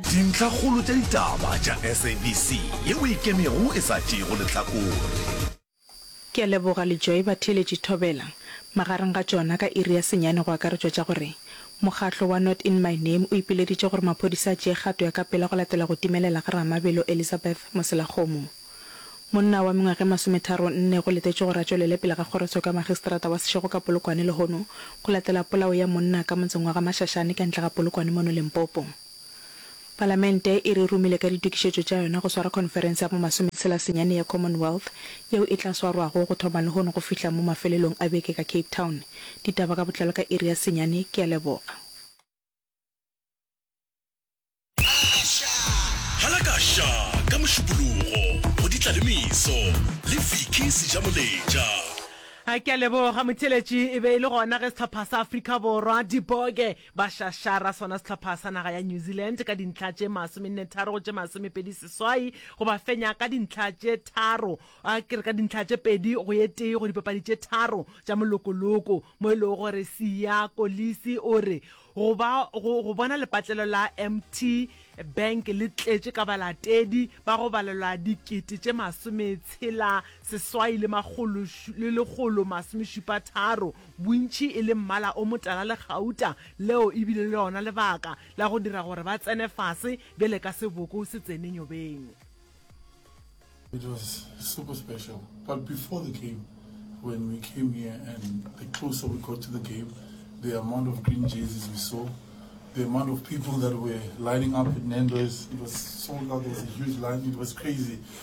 Dintlhakgolo tša ditaba tša SABC yeo e ikemego e sa tšeego lehlakore. Ke a leboga Lejoe Batheeletši Thobela. Magareng ga tšona ka iri ya senyane go akaretšwa tša gore, Mokgatlo wa Not In My Name o ipileditše gore maphodisa a tšee kgato ya ka pela go latela go timelela ga Ramabelo Elizabeth Moselakgomo. Monna wa mengwaga e masometharo nne go letetšwe gore a tšwelele pele ga kgorotsheko ya Magistrata wa Seshego ka Polokwane lehono go latela polao ya monna ka motseng wa ga Mashashane ka ntle ga Polokwane mono Limpopo. Palamente e re romile ka ditokišetšo tša yona go swara khonferense ya bo masometshela senyane ya Commonwealth yeo e tla swarwago go thoma lehono go fihla mo mafelelong a beke ka Cape Town. Ditaba ka botlalo ka iri ya senyane. Ke a leboga. Halakasha ka Mošupologo go di tla le meso le Vicky Sejamoletša. Ke a leboga motheeletši. E be e le gona ge sehlopha sa Afrika Borwa, Diboge, Ba šašara sona sehlopha sa naga ya New Zealand ka dintlha tše masomennetharo go tše masomepedi seswai go ba fenya ka dintlha tše tharo a ke re ka dintlha tše pedi go ye tee go dipapadi tše tharo tša molokoloko mo e lego gore Siya Kolisi o re go ba go, go bona lepatlelo la MT Bank le tletše ka balatedi ba go balelwa dikete tše masometshela seswai le makgolo le lekgolo masomešupa tharo bontši e le mmala o motala le gauta, leo e bile le lona lebaka la go dira gore ba tsene fase bjale ka seboko se tsene nyobeng. It was super special but before the game when we came here and the closer we got to the game the amount of green jerseys we saw, the amount of people that were lining up at Nando's, it was sold out, there was a huge line, it was crazy.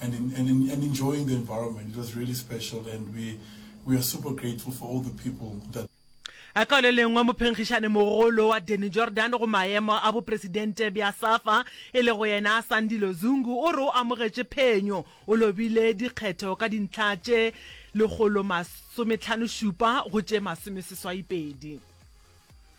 and in, and in, and enjoying the environment. It was really special, and we we are super grateful for all the people that. a ka le lengwe mophenkgišane mogolo wa Danny Jordan go maemo a bopresidente bja SAFA e le go yena Sandile Zungu o re o amogetše phenyo o lobile dikgetho ka dintlha tše lekgolo masometlhano šupa go tše masomeseswaipedi.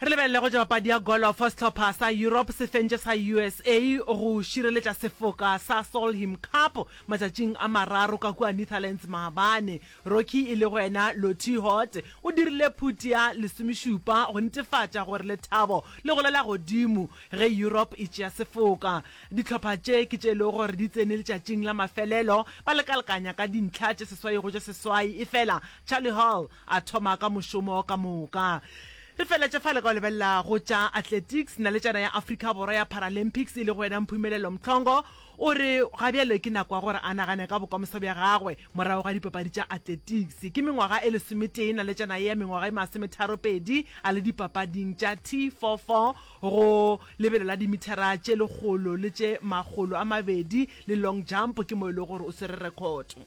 Re lebelele go ja papadi ya golofo. Sehlopha sa Europe se fentše sa usa go šireletša sefoka sa Solheim Cup matšatšing a mararo ka kua Netherlands maabane. Rocky e lego yena Lottie Hort o dirile phuti ya lesomešupa go netefatša gore lethabo le golela godimo ge Europe e tšea sefoka. Dihlopha tše ke tše e lego gore di tsene letšatšing la mafelelo ba lekalekanya ka dintlha tše seswai go tše seswai efela Charlie Hall A thoma ka mošomo ka moka. Re feletše fale ka go lebelela go tša athletics. Naletšana ya Afrika Borwa ya Paralympics e lego yena Mphumelelo Mhlongo o re ga bjale ke nako ya gore a nagane ka bokamoso bja gagwe morago ga dipapadi tša athletics. Ke mengwaga e lesometee naletšana ye ya mengwaga e masometharopedi a le dipapading tša T44 go lebelo la dimithara tše lekgolo le tše makgolo a mabedi le long jump ke mo e lego gore o swere rekhoto.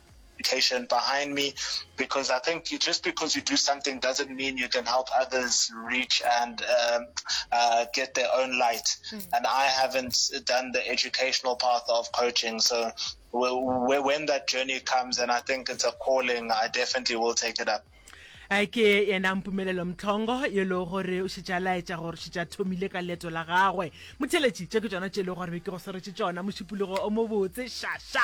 patient behind me because I think you, just because you do something doesn't mean you can help others reach and um, uh, get their own light. Mm. And I haven't done the educational path of coaching, so when that journey comes, and I think it's a calling, I definitely will take it up. a ke yena mpumelelo mtlhongo yo e le gore o šetša laetša gore šetša thomile ka leeto la gagwe motheletši tše ke tsona tše e le gore be ke go swaretse tsona mošupologo o mobotse šaša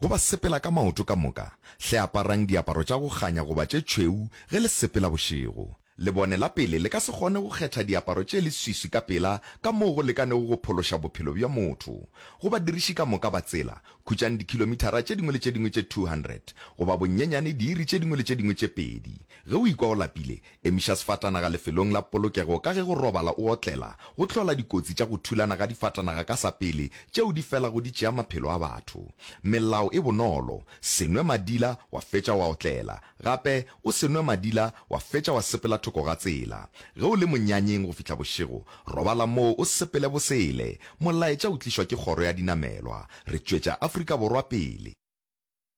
Go ba sepela ka maoto ka moka, hle aparang diaparo tša go kganya goba tše tšhweu ge le sepela bošego. Lebone la pele le ka se kgone go kgetha diaparo tše leswiswi ka pela ka moo go lekanego go phološa bophelo bja motho. Go badiriši ka moka ba tsela, khutšang dikhilomithara tše dingwe le tše dingwe tše 200, goba bonyenyane diiri tše dingwe le tše dingwe tše pedi. Ge o ikwa o lapile, Emiša sefatanaga lefelong la polokego ka ge go robala o otlela go hlola dikotsi tša go thulana ga difatanaga ka sa pele tšeo di felago di tšea maphelo a batho. Melao e bonolo, Se nwe madila wa fetša wa otlela. Gape, o se nwe madila wa fetša wa sepela thoko ga tsela. Ge o le monyanyeng go fihla bošego, robala moo o sepele bosele. Molaetša o tlišwa ke Kgoro ya Dinamelwa. Re tšwetša Afrika Borwa pele.